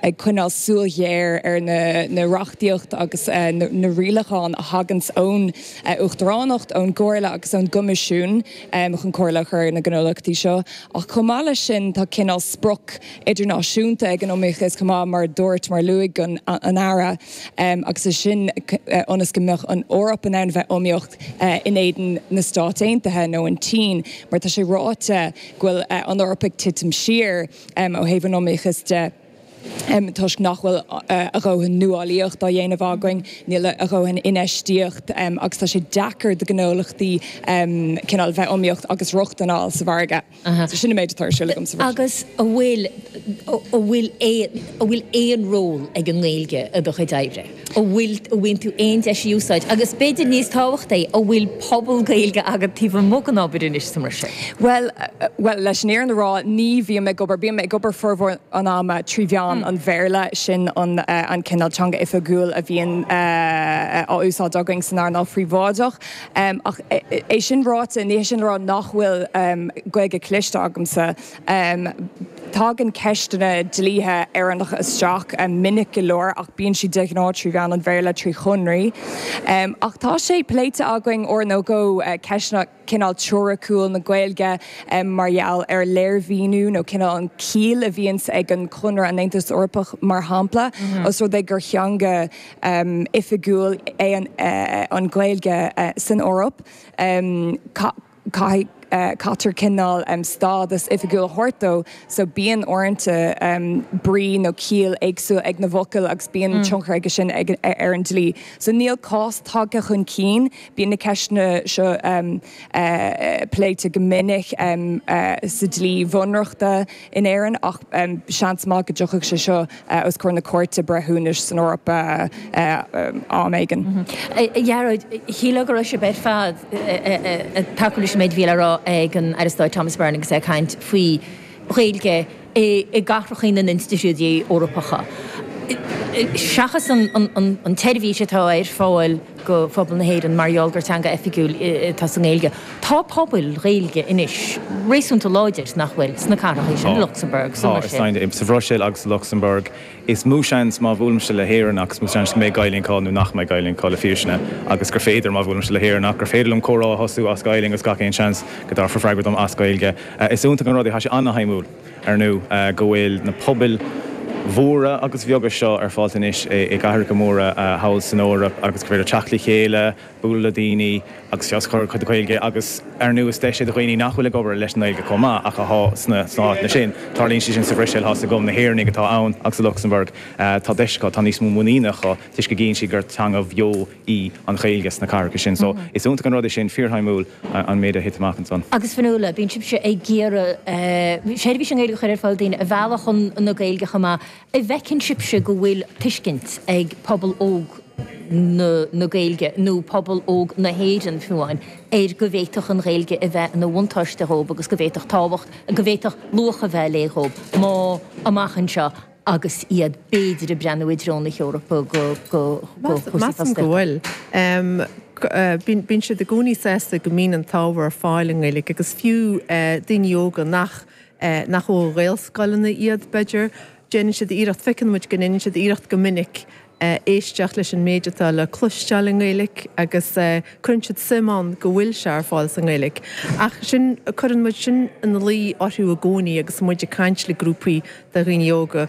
ag coinneáil súil ghéar ar na reachtaíochtaí agus na rialacháin a thaganns ón Uachtaránacht, ón gComhairle agus ón gCoimisiún chun comhairle a chur ar na gnólachtaí seo. Ach chomh maith leis sin, tá cineál sprioc idirnáisiúnta ag an iomaíochas chomh maith, mar a dúirt, mar a luaigh an tAire, agus é sin ionas go mbeadh an Eoraip in ann bheith iomaíoch in éadan na Stát Aontaithe nó an tSín, mar tá sé ráite go bhfuil an Eoraip ag titim siar. ó thaobh an iomaíochas de toisc nach bhfuil a dóthain nuálaíocht á dhéanamh againn, níl a dóthain infheistíocht agus tá sé deacair do ghnólachtaí cineál bheith iomaíoch agus rochtain a fháil sa mhargadh. So sin an méid atá ar siúl agamsa. Agus an bhfuil, an bhfuil aon, an bhfuil aon ról ag an nGaeilge i do chuid oibre? an bhfaigheann tú aon deis í a úsáid agus, b'fhéidir níos tábhachtaí, an bhfuil pobal Gaeilge agat taobh amuigh den obair anois mar sin? Bhuel, bhuel, leis an fhírinn a rá, ní bhím ag obair, bím ag obair formhór an ama trí mheán an Bhéarla, sin an an cineál teanga oifigiúil a bhíonn á úsáid againn san earnáil phríobháideach. Ach é sin ráite, ní hé sin le rá nach bhfuil Gaeilge cloiste agamsa, Tagann ceisteanna dlíthe Éireannach isteach minic go leor ach bíonn siad de ghnáth trí mheán an Bhéarla, trí shonraí. Ach tá sé pléite againn uair nó dhó ceisteanna cineál teoiriciúil na Gaeilge mar gheall ar léirmhíniú nó cineál an chiall a bhíonns ag an gConradh, an Aontas Eorpach, mar shampla, os rud é gur theanga oifigiúil é an Ghaeilge san Eoraip. caithfidh, caithfear cineál stádas oifigiúil a thabhairt dó so bíonn uaireanta brí nó ciall éagsúil ag na bhfocail agus bíonn tionchar aige sin ar an dlí. So níl cás tagtha chun cinn, bíonn na ceisteanna seo pléite go minic sa dlí bhunreachta, in Éirinn ach seans maith go dtiocfadh sé seo os comhair na Cúirte Breithiúnais san Eoraip am éigin. A Ghearóid, shílfeá go raibh sibh ar fad ag tacú leis an méid a bhí le rá ag an Aire Stáit Thomas Byrne agus é ag caint faoi Ghaeilge i gcathracha na n-institiúidí Eorpacha seachas an tseirbhís atá ar fáil do phobal na hÉireann mar gheall gur teanga oifigiúil atá sa nGaeilge. Tá pobail Ghaeilge anois réasúnta láidir, nach bhfuil, sna cathracha sin, i Lucsamburg, sa mBruiséil. Tá, sa Bhruiséil agus i Lucsamburg. Is mó seans, má bhuailimse le hÉireannach, is mó seans go mbeidh Gaelainn acu ná nach mbeidh Gaelainn acu, le fírinne, agus gur féidir, má bhuailimse le hÉireannach, gur féidir liom comhrá a thosú as Gaelainn agus gach aon seans go dtabharfar freagra dom as Gaeilge. Is iontach an rud é, tá sé an-taitneamhach. Ar ndú, go bhfuil na pobail mhóra agus bheaga seo ar fáil anois i gcathracha móra thall san Eoraip agus gur féidir teacht le chéile, bualadh le daoine agus feabhas a chur ar a gcuid Gaeilge agus ar ndú is deis é do dhaoine nach bhfuil ag obair leis an nGaeilge chomh maith ach atá sna háiteanna sin. Tarlaíonn sé sin sa Bhruiséil, háirithe sa gCom, na hÉireannaigh atá ann agus sa Lucsamburg, tá deis acu, tá níos mó muiníne acu toisc go gcíonn siad gur teanga bheo í an Ghaeilge sna cathracha sin. So, is iontach an rud é sin, fíorshuimiúil an méid a thit amach ansan. Agus Fionnuala, bíonn sibhse ag iarraidh seirbhís i nGaeilge a chur ar fáil, daoine a mhealladh chun na Gaeilge chomh maith. An bhfeiceann sibhse go bhfuil tuiscint ag pobal óg na Gaeilge, nó pobal óg na hÉireann fiú amháin, ar go bhféadfadh an Ghaeilge a bheith ina bhuntáiste dhóibh agus go bhféadfadh tábhacht, go bhféadfadh luach a bheith léi dhóibh má, amach anseo, agus iad b'fhéidir ag breathnú i dtreo na hEorpa do chúrsaí fostaíochta. Bíonn siad i gcónaí sásta go mbíonn an t-ábhar ar fáil i nGaeilge agus fiú daoine óga nach ó ghaelscoileanna iad, b'fhéidir, déanann siad iarracht, feiceann muid go ndéanann siad iarracht go minic éisteacht leis an méid atá le cloisteáil i nGaeilge agus cuireann siad suim ann go bhfuil sé ar fáil sa nGaeilge. Ach sin, cuireann muid sin ina luí orthu i gcónaí agus muid ag caint le grúpaí de dhaoine óga,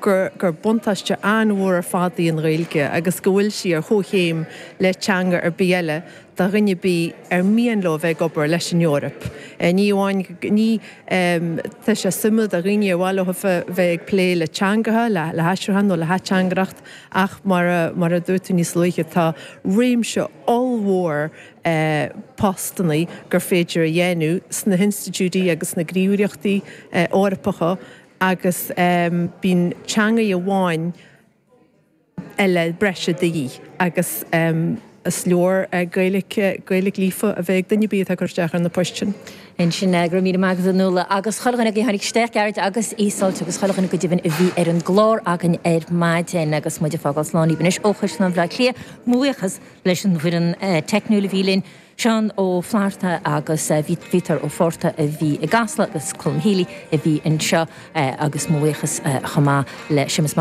gur buntáiste an-mhór ar fad í an Ghaeilge agus go bhfuil sí ar chomhchéim le teanga ar bith eile. do dhuine ar bith ar mian leo a bheith ag obair leis an Eoraip. Ní amháin go Tá sé suimiúil do dhaoine ar mhaith leo a bheith ag plé le teangacha, le haistriúchán nó le hateangaireacht ach mar a dúirt tú níos luaithe tá réimse ollmhór postanna gur féidir a dhéanamh sna hinstitiúidí agus sna gníomhaireachtaí Eorpacha agus bíonn teanga amháin eile breise de dhíth agus is leor Gaeilge líofa a bheith ag duine ar bith atá ag cur isteach ar na poist sin. Ansin, go raibh míle maith agat, a Fhionnuala, agus chuile dhuine agaibh a tháinig isteach, Gearóid agus Íosold agus chuile dhuine, go deimhin, a bhí ar an gclár againn ar maidin agus muid ag fágáil slán agaibh anois ó Chaisleán Bhaile Átha Cliath. Mo bhuíochas leis an bhfoireann teicniúil a bhí linn, Seán Ó Flaithearta agus Vítor Ó Fátharta a bhí i gCasla agus Colm Healy a bhí anseo agus mo bhuíochas chomh maith le Séamus Mac